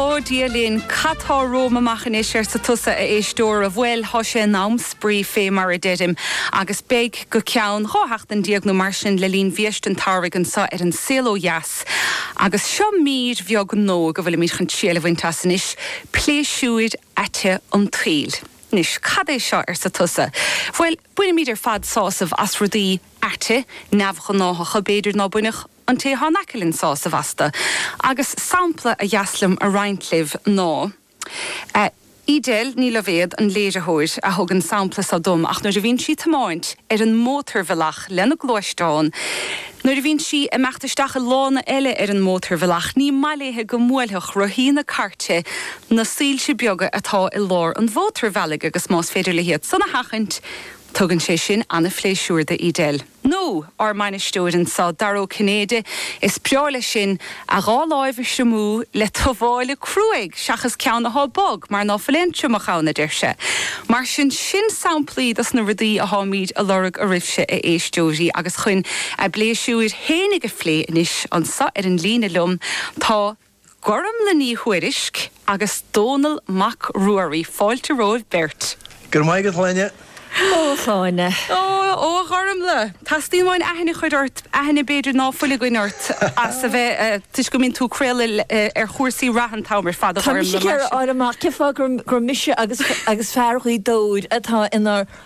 Ó, Dia linn, cad tá romham amach anois, arsa tusa, a éisteora. Bhuel, tá sé in am spraoi, fé mar a deirim, agus beidh go ceann dhá sheachtain déag nó mar sin le linn bhiaiste an tsamhraidh anseo ar an Saol Ó Dheas. Agus seo mír bheag nua go bhfuilimid chun triail a bhaint as anois, pléisiúir aite an tsaoil. Anois, cad é seo, arsa tusa. Bhuel, bainimid ar fad sásamh as rudaí aite, neamhghnáthacha, b'fhéidir ná bainfeadh, An té atá in aice linn sásamh astu. Agus sampla ba dheas liom a roinnt libh ná Edel Ní Loibhéad, an léiritheoir, a thug an sampla seo dom ach nuair a bhíonn sí ag tiomáint ar an mótarbhealach lena gluaisteán, nuair a bhíonn sí ag imeacht isteach i lána eile ar an mótarbhealach, ní maith léi go mbuailfeadh rothaí na cairte na soilse beaga atá i lár an mhótarbhealaigh agus más féidir léi iad san a sheachaint, tugann sé sin an-phléisiúr do Edel. Nó ár mbainisteoir anseo, Dara Ó Cinnéide, is breá leis sin a dhá láimh a thriomú le tuáille cruaidh seachas ceann athá bog mar ná fuil aon triomach ann, a deir sé. Mar sin, sin samplaí dos na rudaí atháimíd a lorg oraibhse, a éisteoirí, agus chuin a bpléisiúir fhéinig a phlé anois, anseo ar an líne liom tá. Gormlaith Ní Thuairisg agus Dónall Mac Ruairí fáilte romhaibh beirt. Go raibh maith agat, a Shláine. Ó, a Shláine. Ó, a Ghormlaith. Teastaíonn uainn aithne a chur ort, aithne b'fhéidir ná fuil againn ort, as a bheith, toisc go mbíonn tú ag craoladh ar chúrsaí reatha an t-am ar fad, a Ghormlaith. Tá mise ag iarraidh a fháil amach cén fáth gur mise agus fear Ghaoth Dobhair atá inár.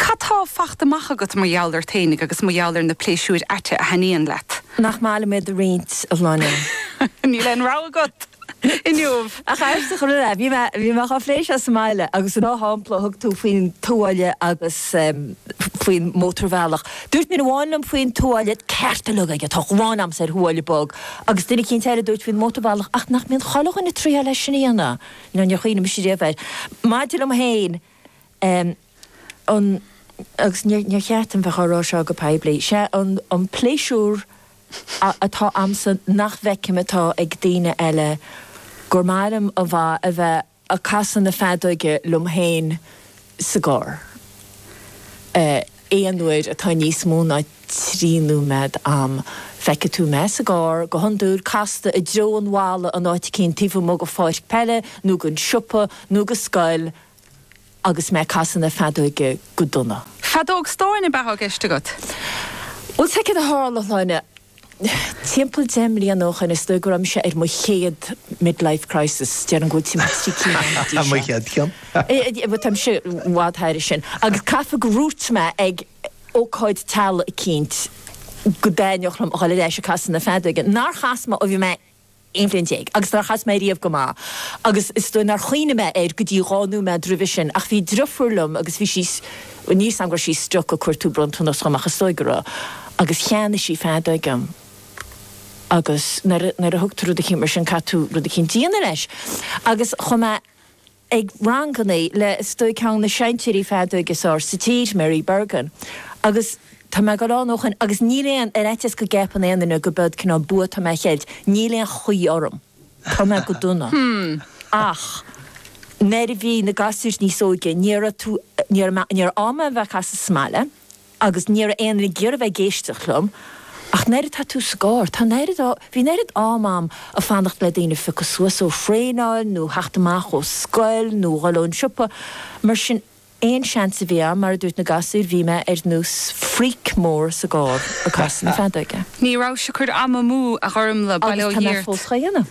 Cad tá fachta amach agat mar gheall ort fhéinig agus mar gheall ar na pléisiúir aite a thaitníonn leat? Nach maith liom iad a roinnt, a Shláine. Níl aon rogha agat inniu! Ach arsa chor ar ais, bhí mé, bhí mé dhá phlé seo sa mbaile agus an dá shampla a thug tú faoin tuáille agus faoin mótarbhealach, dúirt duine amháin liom faoin tuáille, ceart uilig aige, tá an ghráin agamsa ar thuáille bog, agus duine eicínt eile a dúirt faoin mótarbhealach, ach nach mbíonn chuile dhuine ag traíáil é sin a dhéanamh? Nó níor chuimhnigh mise riamh air. Maidir liom féin, an an agus níor níor cheart dom bheith á rá seo go poiblí sé an an pléisiúr a atá a'msa nach bhfeicim atá ag daoine eile gur maith liom a bha a bheith a' casadh na feadóige liom féin sa gcarr eh aon uair atá níos mó ná trí nóiméad a'm feicfidh tú mé sa gcarr go hiondúil casta i dtreo an bhalla in áit eicínt taobh amuigh go pháirc peile nó gon siopa nó go scoil Agus mé ag casadh na feadóige go dona. Feadóg stáin ab ea atá i gceist agat? Bhuel, sé céard a tharla, a Shláine. Timpeall deich mbliana ó shin, is dóigh go raibh mise ar mo chéad mid-life crisis, déarfainn go bhfuil timpeall trí cinn ann go dtí seo. Mo chéad cheann. Bhuel, táimse i bhfad thairis sin. Agus caithfidh gur dhúirt mé ag ócáid teaghlaigh eicínt go dtaitneodh liom a dhul ar ais ag casadh na feadóige. Nár chas mé ó bhí mé aon bhliain déag, agus nár chas mé riamh go maith, agus is dóigh nár chuimhnigh mé air go dtí dhá nóiméad roimhe sin, ach bhí driofúr liom agus bhí sí, bhuel, níl 's a'm go raibh sí stuck ag cuartú bronntanas dhom ach is dóigh go raibh, agus cheannaigh sí feadóg dhom, agus nuair a, nuair a thugtar rud eicínt mar sin, caithfidh tú rud eicínt a dhéanamh leis, agus chuaigh mé. ag ranganna le, is dóigh, ceann de na seinnteoirí feadóige is fhearr sa tír, Mary Bergin, agus tá mé ag dul ann ó shoin agus níl aon, ar fhaitíos go gceapann aon duine gurb eod cineál bua atá mé a cheilt, níl aon chaoi orm, tá mé go dona. Ach nuair a bhí na gasúir níos óige, níor fhéad tú, níor fhéad mé, níor fhéad mé a bheith ag casadh sa mbaile. agus ní raibh aon duine ag iarraidh a bheith ag éisteacht liom, ach an oiread tá tú sa gcarr, tá an oiread á, bhí an oiread am a'm a' fanacht le daoine a phiocadh suas ó thraenáil nó theacht amach ó scoil nó dhul ón siopa, mar sin aon seans a bhí a'm, mar a dúirt na gasúir, bhí mé ar nós freak mór sa gcarr ag casadh na feadóige. Ní raibh soicind am amú, a Ghormfhlaith. Bail ó Dhia ort. Agus tá mé fós dhá dhéanamh.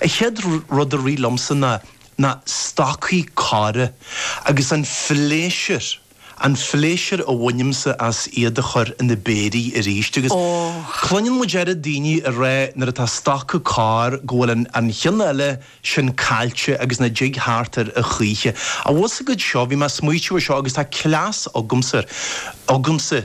An chéad rud a rith liomsa ná na stocaí corra agus an phléisiúr, an phléisiúr a bhainimse as iad a chur ina bpéirí arís agus cluineann muid oiread daoine ag rá nuair atá stoca corr go bhfuil an chionn eile sin caillte agus nach dtig theacht air a choíche. An bhfuil a fhios agat seo, bhí mé ag smaoitiú ar seo agus tá cleas agamsa agamsa,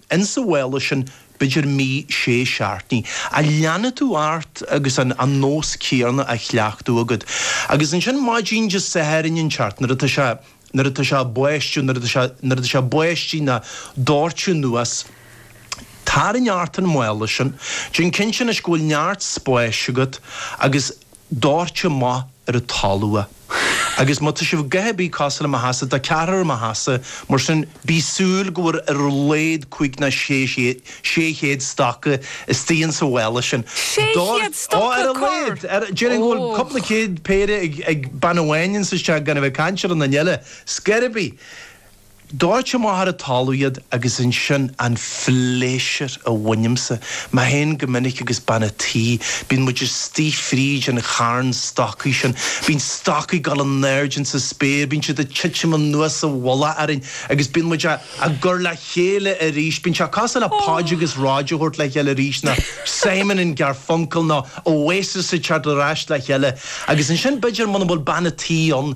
ins an mhála sin b'fhéidir mí sé seachtainí, a leanfaidh tú ort agus an nós céarna á chleachtadh agad. Agus ansin maidin Dé Sathairn inteacht nuair atá sé, nuair atá sé báistiú, nuair atá sé, nuair atá sé báistí nó ag doirteadh anuas, tarraing ort an mála sin, déan cinnte anois go bhfuil neart spáis agat agus, doirt amach ar an talamh é agus má tá sibh a dhath ar bith cosúil le mo theachsa tá ceathrar i mo theachsa mar sin bí ag súil go bhfuil ar a laghad cúig nó sé chéad stoca istigh ins an mhála sin. Sé chéad stoca corr? Ó ar a laghad déarfainn go bhfuil cúpla céad péire ag bean amháin ins an teach gan a bheith ag caint ar aon duine eile. Scor ar bith. Doirt amach ar an talamh iad agus ansin an phléisiúr a bhainimse, mé féin go minic agus bean a' tí, bíonn muid istigh fríd an charn stocaí sin, bíonn stocaí ag dul in airde ins an spéir, bíonn siad ag titim anuas sa mhullach orainn agus bíonn muid á gcur le chéile arís, bíonn sé cosúil le Podge agus Rodge a thabhairt le chéile arís nó Simon and Garfunkel nó Oasis ag teacht ar ais le chéile agus ansin b'fhéidir muna bhfuil bean a' tí ann,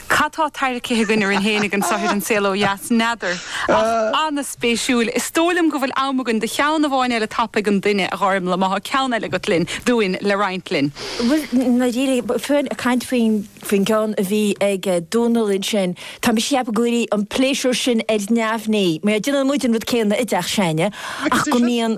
Cad tá tarraingthe againn orainn féin ag an saothar An Saol Ó Dheas? N'fheadar. Ach an-spéisiúil. Is dóigh liom go bhfuil am againn do cheann amháin eile tapa ag aon duine, a Ghormfhlaith, má tá ceann eile agat linn, dúinn, le roinnt linn. Bhuel, ná díreach. Fúinn ag caint faoin gceann a bhí ag Dónall ansin. Tá mise ag ceapadh go bhfuil an pléisiúr sin ar neamhní. Má dhéanann muid an rud céanna i dteach s'againne ach go mbíonn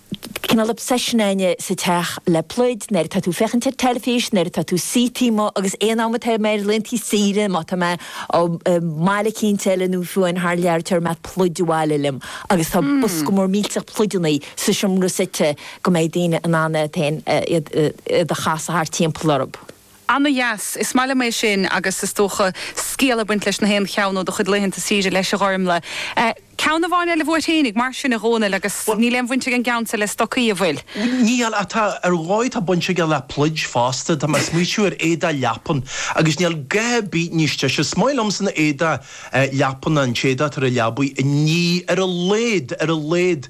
cineál obsession againne sa teach le pluid, nuair atá tú ag féachaint ar teilifís, nuair atá tú suítí mo agus aon am atá mé ar laethantaí saoire, má tá mé i mbaile éicint eile nó fiú amháin thar lear, tabharfaidh mé pluid abhaile liom agus tá bosca mór millteach pluideanna sa seomra suite go mbeidh daoine in ann iad féin iad a chasadh thart timpeall orthu. Ana dheas. Is maith liom é sin agus is dócha scéal ag baint leis na haon cheann ó do chuid laethanta saoire leis a Ghormlaith. Ceann amháin eile uait fhéinig mar sin a Dhomhnaill agus Bhuel, níl aon bhaint ag an gceann seo le stocaí a' bhfuil? Níl, ach tá, ar dhóigh tá baint aige le pluid fosta, tá mé a' smaoitiú ar éadach leapan agus níl a dhath ar bith níos deise, is maith liomsa na éadach leapan ná an t-éadach atá ar a' leabaidh a ní ar a laghad, ar a laghad.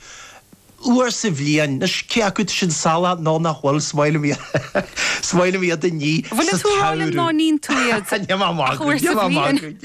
uair sa bhliain. Anois, cé acu tá sin salach nó nach bhfuil, is maith liom iad a ní Bhfuil sa tú ag rá linn ná tsamhradh. níonn tú iad Níl mé á ach magadh, uair níl sa mé á bhliain? magadh.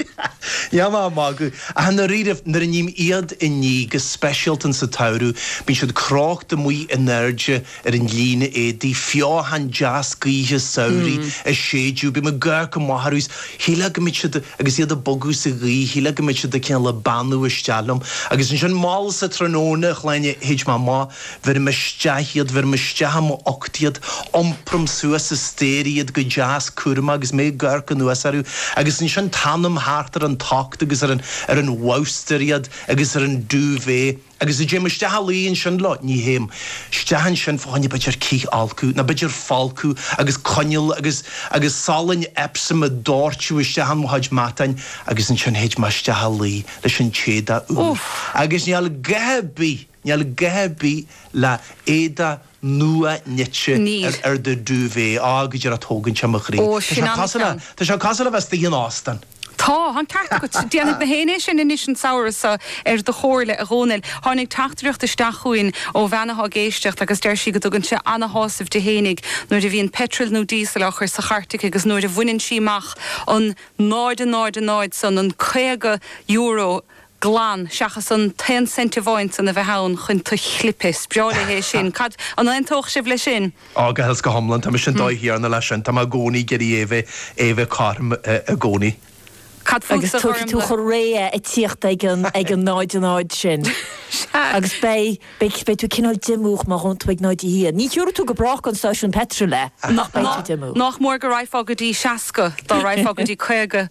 Níl mé á magadh. Ach i ndáiríribh, nuair a ním iad a ní, go speisialta sa tsamhradh, bíonn siad crochta amuigh in airde ar an líne éadaigh, feothan deas gaoithe samhraidh ag séideadh, bíonn mé ag amharc amach orthu Shílfeá go mbeadh siad agus iad ag bogadh sa ghaoth shílfeá go mbeadh siad cineál ag beannú isteach liom. Agus ansin mall sa tráthnóna, a Shláine, théid mé amach, bheirim isteach iad, bheirim isteach i m'ucht iad, iompram suas an staighre iad go deas cúramach agus mé ag amharc anuas orthu agus ansin teannaim thart ar an tocht agus ar an ar an bhabhstar iad agus ar an duvet Agus a dtéim isteach a luí ansin leo, ní théim isteach ansin fá choinne b'fhéidir cithfholcadh, nó b'fhéidir folcadh agus coinneal agus agus salainn Epsom ag doirteadh isteach in mo chuid matáin agus ansin théid mé isteach a luí leis an t-éadach úr. Úff! Agus níl a dhath ar bith, níl a dhath ar bith le éadach nua-nite Níl. ar do duvet, á, go díreach tógann sé mo chroí. Ó, Tá sin sé cosúil le, an-cheann. tá sé cosúil le bheith istigh in óstán. Tá an ceart agat. Déanfaidh na haoinne é sin anois an samhradh so, ar do chomhairle, a Dhomhnaill. Tháinig teachtaireacht isteach chugainn ó bhean atá ag éisteacht agus deir sí go dtugann sé ana-shásamh di fhéinig nuair a bhíonn peitreal nó díosal á chur sa chairt aici agus nuair a bhaineann sí amach an 0.00 san, an €50 glan, seachas an t-aon cent amháin san a bheith ann chun tú a chlipeadh. 'S breá léi é sin. Cad, an aontódh sibh leis sin? Á, go huile is go hiomlán. Tá mise an dóigh chéanna leis sin. Tá mé i gcónaí ag iarraidh é a bheith, é a bheith cothrom i gcónaí. Cad Agus fútsa, a tabharfaidh tú Ghormlaith? chun réidhe ag tíocht ag an, ag an 0, an áit sin. Sea. Agus beidh, beidh, beidh tú cineál diomúch má ghabhann tú ag 0 a haon. Ní thiúrfaidh tú go brách don stáisiún peitril é, Ná, ach beidh ná, tú diomúch. nách mór go raghfá go dtí 60, dá raghfá go dtí 50.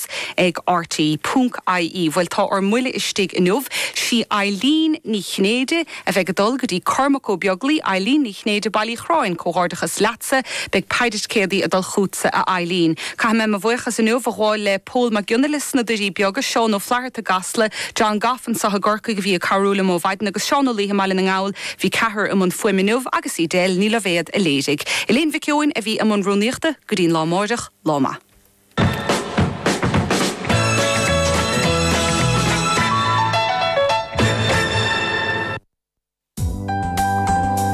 ag RTÉ, ponc, IE, Bhuel tá ár mbuille istigh inniu. 'Sí Eileen Ní Chinnéide a bheidh ag dul go dtí Cormac Ó Beaglaoi, Eileen Ní Chinnéide Baile Uí Chorráin, comhghairdeachas leatsa, beidh péire ticéadaí ag dul chútsa a Eileen. Caithfidh mé mo bhuíochas inniu a ghabháil le Pól Mac Giolla Easbuic sna Doirí Beaga, Seán Ó Flatharta i gCasla, John Gough anseo i gCorcaigh a bhí ag cabhrú liom ó mhaidin agus Seán Ó Laoithe i mBaile na nGall, bhí ceathrar i mbun fuaime inniu agus Edel Ní Loibhéad a léirigh. Elaine Mhic Eoin a bhí i mbun rúnaíochta, go dtí'n lá amáireach, lá maith.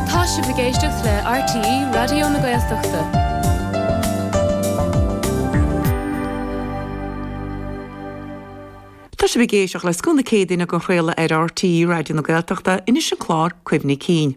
Tá sibh ag éisteacht le RTÉ Raidió na Gaeltachta. Tá sibh ag éisteacht le Scoth na Céadaoine á craoladh ar RTÉ Raidió na Gaeltachta. Anois an clár Cuimhní Cinn.